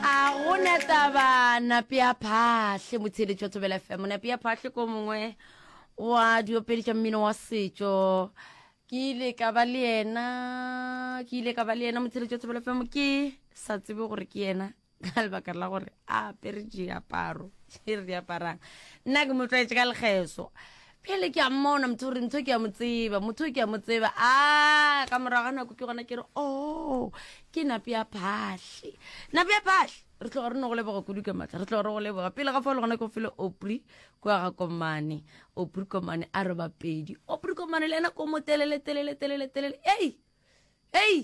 a go na taba nape ya phahle motheeletši wa thobela fm nape ya phahle ko mongwe wa diopedi tša mmino wa setšo ke ile ka ba le yena ke ile ka ba le yena motheeletši wa thobela fm ke sa tsebe gore ke yena ka lebaka la gore a apere diaparo e re di aparang nna ke mo tlwaetse ka lekgeso pele ke a mmona motho gore ntho ke ya mo tseba motho ke ya mo tseba a ka morago ga nako ke gona ke re o oh, ke nape ya phatlhe nape ya phatlhe re tloga re no go leboga kudu ka matlha re tloga re go leboga pele ga fa le gona ke go fele opri ko ga komane opri komane a re bapedi opri komane le ena ko mo telele telele telele telele ei ei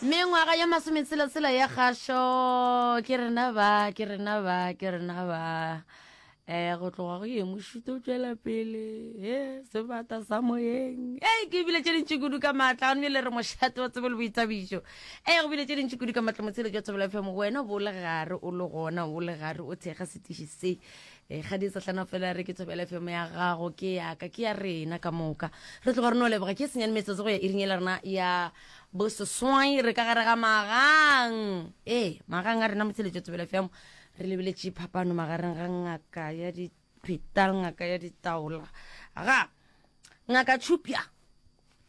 Mengwaga ye masometshela-tshela ya kgašo, ke rena ba, ke rena ba, ke rena ba. Eh, go tloga go ye mošuto o tšwela pele, he, sebata sa moyeng. Hey, ke bile tše dintši kudu ka maatla, gane bjale re mošate wa tsebo le boithabišo. Hey, go bile tše dintši kudu ka maatla motsheletši wa Thobela FM, wena bo le gare, o le gona, o le gare, o thekga setiši se. Eh, ga di sa hlana fela re ke Thobela FM ya gago, ke yaka, ke ya rena ka moka. Re tloga re no leboga ke senyane metsotso go ya iring e le rena ya Boseswai re ka gare ga magang. Ee, magang a rena Motheletšo Tsebela FM. Re lebeletše phapano magareng ga ngaka ya dipheta le ngaka ya ditaola. Ga ngaka Tšhupja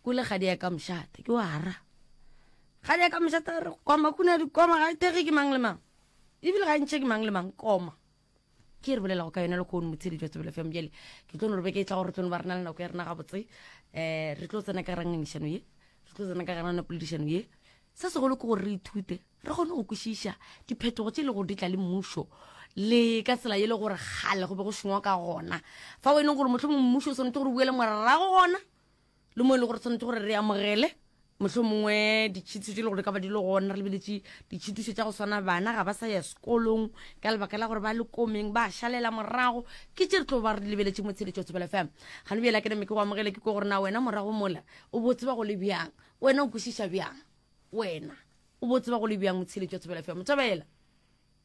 o le kgadi ya ka mošate ke wa ra kgadi ya ka mošate re koma kuna dikoma ga e thekge ke mang le mang ebile ga e ntšhe ke mang le mang koma ke re bolelago ka yona le kgono motshedi jwa tsebele fm bjale ke tlo no re beke e tla gore re tlo no ba re na le nako ya rena gabotse um re tlo tsena ka rangangišano ye re tlo tsena ka garana poledišano ye se segolo ke gore re ithute re kgone go kwešiša diphetogo tše e le gore di tla le mmušo le ka tsela e le gore gale go be go šengwa ka gona fa o e leng gore motlho mongwe mmušo o swanetse gore o buele morago gona le mo e le gore tshwanetse gore re amogele motlho mongwe ditšhitiso tse e le gore ka ba di le gona re lebeletše ditšhitiso tša go swana bana ga ba sa ya sekolong ka lebaka la gore ba le komeng ba šalela morago ke tše re tlo ba re lebeletše mo tsheletšo tsebela fm ga le bjela ke neme ke go amogele ke ko gore na wena morago mola o bo tseba go le bjang wena o kwešiša bjang wena o bo tseba go le bjang mo tsheletšo tsebela fm tsebela